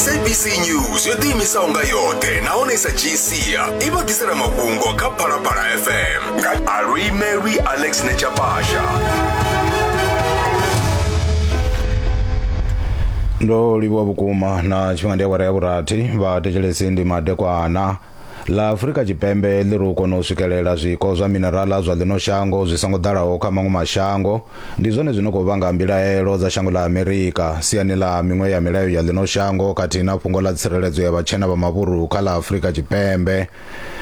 sabc news yo ḓiimisaho nga yoṱhe nahone i sa dzhii sia i vha ḓisela mafhungo kha phalaphala fm nga alwimelwi alex nechapasha ndo livhuwa vhukuma na tshifhinga ndi awara ya vhurathi vha thetshelesi ndi madekwana ḽa Afurika Tshipembe ḽi ri u kona u swikelela zwiko zwa mineraḽa zwa ḽino shango zwi songo ḓalaho kha maṅwe mashango ndi zwone zwi no khou vhanga mbilaelo dza shango ḽa Amerika siani ḽa miṅwe ya milayo ya ḽino shango khathihi na fhungo ḽa tsireledzo ya vhatshena vha mavhuru kha ḽa Afurika Tshipembe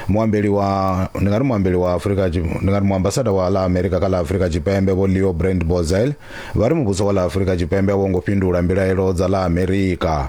muambeli wa ndi nga ri muambeli wa Afurika ndi nga ri muambasada wa ḽa Amerika kha ḽa Afurika Tshipembe vho Leo Brand Bozel vha ri muvhuso wa ḽa Afurika Tshipembe a wo ngo fhindula mbilaelo dza ḽa Amerika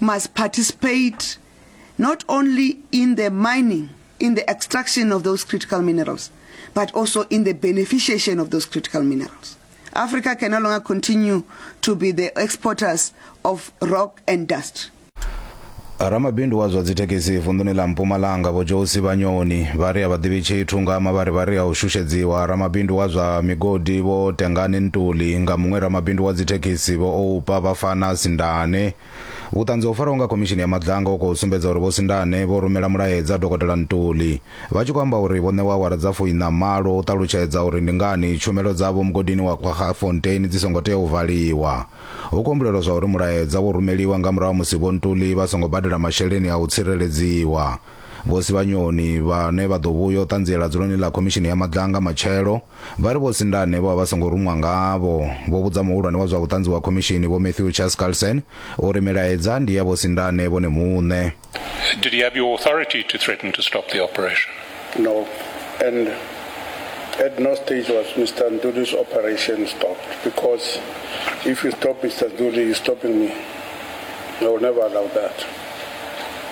must participate not only in the mining, in the extraction of those critical minerals, but also in the beneficiation of those critical minerals. Africa can no longer continue to be the exporters of rock and dust. ramabindu wa zwa dzithekhisi vunḓuni ḽa mpumalanga vho josi vhanyoni vha ri a vha ḓivhi tshithu nga mavharivhari a u shushedziwa ramabindu wa zwa migodi vho tengani ntuli nga muṅwe ramabindu wa dzithekhisi vho oupa vhafana sindana Ane. Vhuṱanzi ho farwaho nga Khomishini ya Maḓanga ho khou sumbedza uri Vho Sindane vho rumela mulaedza Dokotela Ntuli vha tshi khou amba uri vho ṋewa awara dza fuiṋa-malo u ṱalutshedza uri ndi ngani tshumelo dzavho mugodini wa Kwaggafontein dzi songo tea u valiwa. Hu khou humbulelwa zwauri mulaedza wo rumeliwa nga murahu ha musi Vho Ntuli vha songo badela masheleni a u tsireledziwa. Vho Sivhanyoni vhane vha ḓo vhuya u ṱanziela dzuloni ḽa Khomishini ya Maḓanga matshelo, vha ri Vho Sindane vho vha vha songo ruṅwa ngavho. Vho vhudza muhulwane wa zwa vhuṱanzi wa khomishini, Vho Matthew Chaskalson, uri milaedza ndi ya Vho Sindane vhone muṋe. Did he have your authority to threaten to stop the operation? No, and at no stage was Mister Nduli's operation stopped because if you stop Mister Nduli, you're stopping me. I will never allow that.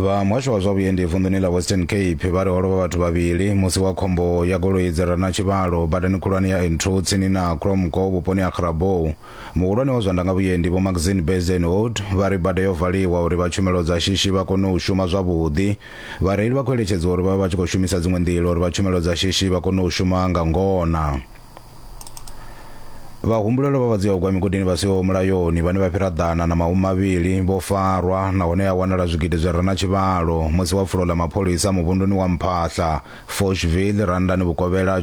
vha muhasho wa zwa vhuendi vunḓuni ḽa western cape vha ri ho lovha vhathu vhavhili musi wa khombo ya goloi dzi rana tshivhalo badani khulwane ya n2 tsini na cromco vhuponi ha grabou muhulwane wa zwa ndanga vhuendi vho maxine bezenhood vha ri bada yo valiwa uri vha tshumelo dza shishi vha kone u shuma zwavhuḓi vhareili vha khou eletshedziwa uri vha vha vha tshi khou shumisa dziṅwe nḓila uri vha tshumelo dza shishi vha kone u shuma nga ngona vhahumbulelwa vha vhadzia ugwa migodini vha siho mulayoni vhane vha fhira ḓana na mahumi mavhili vho farwa nahone ya wanala zwigidi zwi re na tshivhalo musi wa pfulo ḽa mapholisa muvhunduni wa mphahla foshville randani vhukovhela